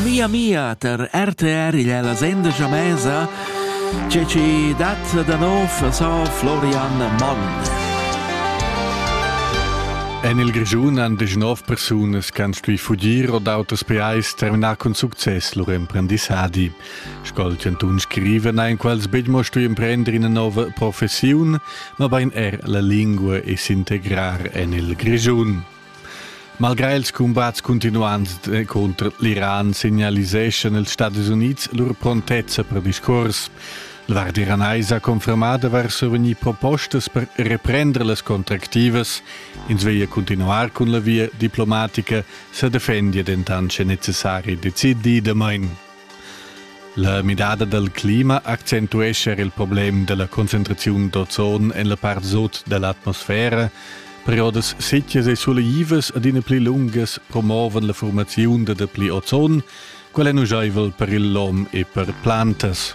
Mia mia ter RTR igl è la senda jamesa che ci dat da nov so Florian Monn. En il Grischun han degnov persunas che han stuì fugir o d'auters pajais terminar cun success lur emprendissadi. Sco'l chantun scriva na in quals betg mo stuì emprender ina nova professiun, ma bain er la lingua e s'integrar en il Grischun. Malgrà ils cumbats cuntinuants eh, contra l'Iran signaliseschan ils Stadis Unids lur prontezza per discurs. La Guardia Iranais ha confermà d'avair survegnì propostas per reprender las contractivas. Ins veglia continuar cun la via diplomatica, sa defendia dentant sche necessari, decid damain. La midada dal clima accentuescha il problem da la concentraziun d'ozon en la part sut da l'atmosfera. Periodas sitgas e suleivas adina pli lungas promovan la formaziun da dapli ozon, quel è nujaivel per il lom e per plantas.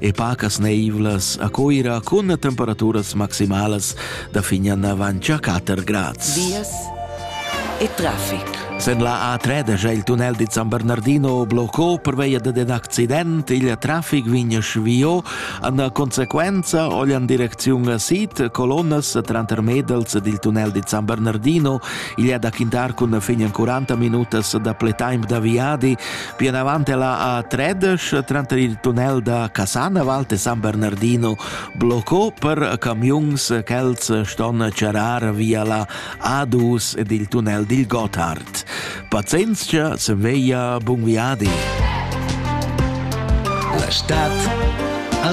e pacas neivlas a Coira cun temperaturas maximalas da fignan avant a 4 grads. Vias e traffic. Sen la A3 da il tunnel di San Bernardino bloccò per via ad un accident, il traffic vegna svio, en conseguenza ogli in direzione a Sid, colonnas trantermedals del tunnel di San Bernardino, il da Quintar con fine 40 minutas da play time da Viadi, Pli anavant ella a Tredesch, tranter il tunnel da Casanavallt e San Bernardino, bloccò per camiuns ch'els ston charrar via la A2 ed il tunnel dil Gotthard. Pazienzia se veia bun viadi. La stad al